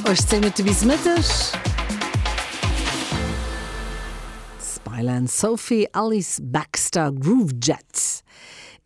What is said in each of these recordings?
18 Minutte bis Mëtteg. Smile and Sophie, Alice Baxter, Groovejet.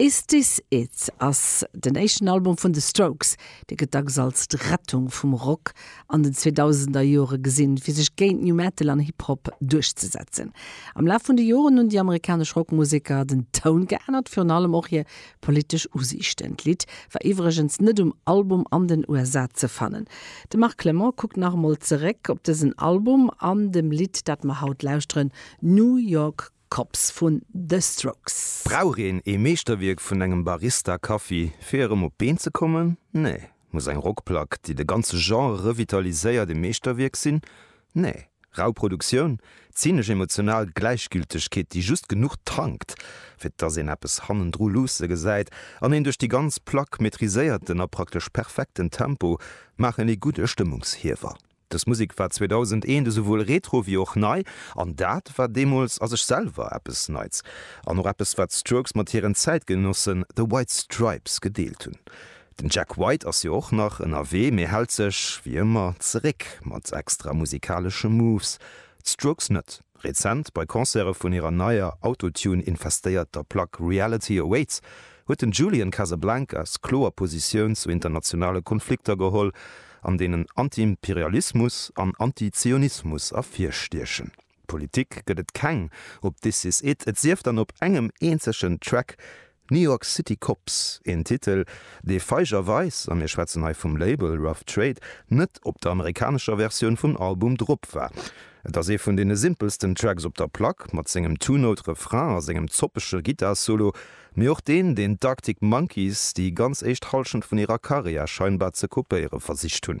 Is This It? ass den éischten Album vun The Strokes. Dee gëtt dacks als d'Rettung vum Rock an den 2000er Jore gesinn, fir sech géint New Metal an Hip Hop duerchzesetzen. Am Laf vun de Joren hunn déi amerikanesch Rockmuseker den Toun geännert, virun allem och hir Politesch Usiichten. D'Lidd war iwwregens net um Album an den USA ze fannen. De Marc Clement kuckt nach emol zeréck op dësen Album an dem Lidd, dat mer haut lauschteren, New York Cops vun The Strokes. Brauch een ee Meeschterwierk vun engem Barista Kaffi fir erëm op d'Been ze kommen? Nee. Muss eng Rockplack, déi de ganze Genre revitaliséiert, ee Meeschterwierk sinn? Nee, rau Produktioun, zynesch emotional Gläichgültegkeet, déi just genuch tankt, fir dass een eppes hannendru luusse gesäit, an een duerch déi ganz Plack maîtriséierten a praktesch perfekten Tempo maachen ee gudde Stëmmungshiewer. Dës Musek war 2001 esouwuel retro wéi och nei, an dat war deemools a sech selwer eppes Neits, an och eppes, wat d'Strokes mat hiren Zäitgenossen The White Stripes gedeelt hunn. Den Jack White ass jo och nach ënnerwee, mee hält sech, wéi ëmmer, zeréck mat extra musikalesche Moves. D'Strokes net. Rezent, bei Concerte vun hirer neier, Autotune-infestéierter Plack Reality Awaits, huet den Julian Casablancas kloer Positioun zu internationale Konflikter geholl, an deenen Antiimperialismus an Antizionismus ervirstiechen. Politik gëtt et keng op This Is It, et sief dann op engem eenzegen Track, New York City Cops, een Titel, dee feigerweis, a mir schwätzen hei vum Label Rough Trade, net op der amerikanescher Versioun vum Album drop war. Et ass ee vun deene simpelsten Tracks op der Plack, mat sengem Two-Note-Refrain a sengem zoppege Gittar-Solo, mee och deen, deen d'Arctic Monkeys déi ganz éischt Hallschent vun hirer Karriär scheinbar ze kopéiere versicht hunn.